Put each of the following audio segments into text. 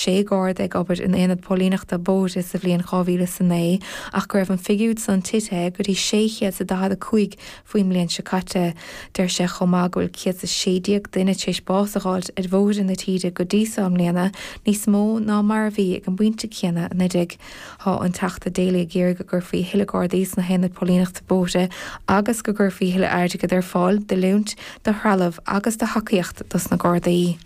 sé Garda ag obair in Aonad Póilíneachta Bóithre sa bhliain 2009 ach go raibh an figiúid san titithe go dtí 645 faoin mbliain seo caite. Deir sé chomh maith go bhfuil 116 duine tar éis bás a dh'fháilt ar bhóithre na tíre go dtí so i mbliana, níos mó ná mar a bhí ag an bpointe céanna anuraidh. Tá an Teachta Daly ag iarraidh go gcuirfí a thuilleadh Gardaí sna hAonaid Póilíneachta Bóithre agus go gcuirfí a thuilleadh airgid ar fáil d'oiliúint, do threalamh agus do thacaíocht dos na Gardaí.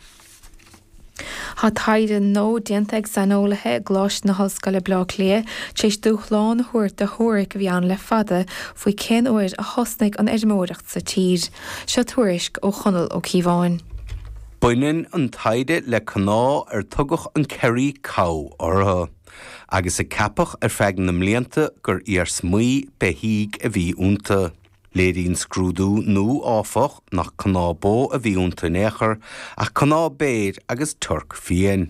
Tá taighde nua déanta ag saineolaithe i gColáiste na hOllscoile Bleá Cliath tar éis dúshlán a thabhairt do theoiric a bhí ann le fada faoi cén uair a thosnaigh an fheirmeoireacht sa tír. Seo tuairisc ó Chonall Ó Cíobháin. Baineann an taighde le cnámha ar tugadh an Kerry Cow orthu agus a ceapadh ar feadh na mblianta gur iarsmaí beithígh a bhí iontu. Léiríonn scrúdú nua, áfach, nach cnámha bó a bhí iontu in aon chor, ach cnámha béir agus toirc fiáin.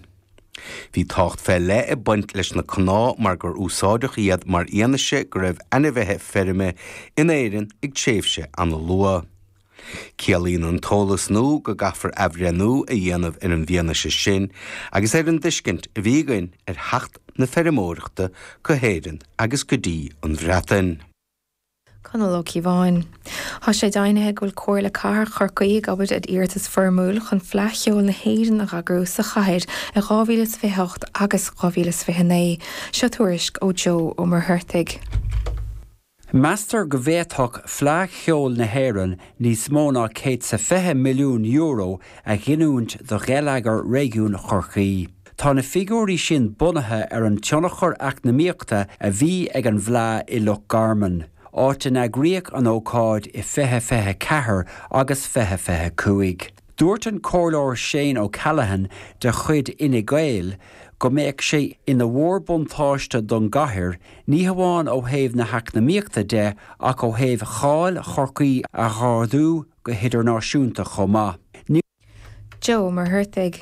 Bhí tábhacht fé leith ag baint leis na cnámha mar gur úsáideadh iad mar fhianaise go raibh ainmhithe feirme in Éirinn ag tréimhse an-luath. Ciallaíonn an t-eolas nua go gcaithfear athbhreithniú a dhéanamh ar an bhfianaise sin agus ar an dtuiscint a bhí againn ar theacht na feirmeoireachta go hÉirinn agus go dtí an Bhreatain. Conall Ó Cíobháin. Tá sé deimhnithe go bhfuil Comhairle Cathrach Chorcaí ag obair ar iarratas foirmiúil chun Fleadh Cheoil na hÉireann a dh'eagrú sa chathair in 2028 agus 2029. Seo tuairisc ó Joe Ó Muircheartaigh. Meastar go bhféadfadh Fleadh Cheoil na hÉireann níos mó ná €120 milliún a ghiniúint do gheilleagar réigiún Chorcaí. Tá na figiúirí sin bunaithe ar an tionchar eacnamaíochta a bhí ag an bhFleadh i Loch Garman, áit a n-eagraíodh an ócáid i 2024 agus 2025. Dúirt an Comhairleoir Shane O'Callaghan de chuid Fhine Gael go mbeadh sé ina mhórbhuntáiste don gcathair, ní hamháin ó thaobh na heacnamaíochta de ach ó thaobh cháil Chorcaí a dh'ardú go hidirnáisiúnta chomh maith. Joe Ó Muircheartaigh.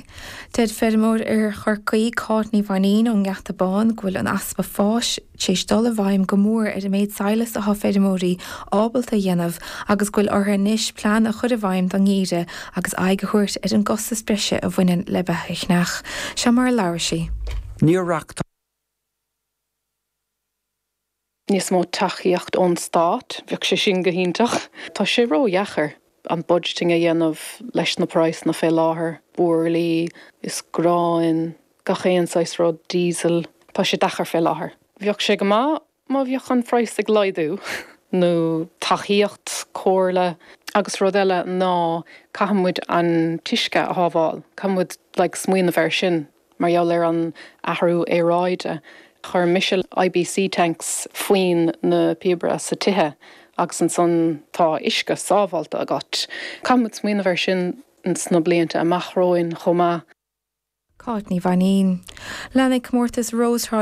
Deir feirmeoir oir Chorcaí, Cáit Ní Mhainín ón nGeata Bán, go bhfuil an easpa fáis tar éis dul i bhfeidhm go mór ar an méid sadhlais atá feirmeoirí ábalta a dhéanamh agus go bhfuil orthu anois plean a chur i bhfeidhm don ngeimhreadh agus aghaidh a thabhairt ar an gcostas breise a bhaineann le beatha a cheannach. Seo mar a labhair sí. níos mó tacaíocht ón stát, bheadh sé sin go hiontach. Tá sé ró-dheacair an budgeting a dhéanamh leis na praghsanna fé láthair, buirlí is gráin, gach aon saghas rud, diesel, tá sé deacair fé láthair. Bheadh sé go maith má bheadh an praghas ag laghdú nó tacaíocht, comhairle. Agus rud eile ná caithfidh muid an t-uisce a shábháil, caithfidh muid like smaoineamh ar sin. Mar gheall ar an athrú aeráide, chuir Michel IBC tanks faoin na píopaí sa tithe agus ansan tá uisce sábháilte agat. Caithfimid smaoineamh ar sin sna blianta amach romhainn chomh maith. Cáit Ní Mhainín. Leanfaidh Comórtas Rós Thrá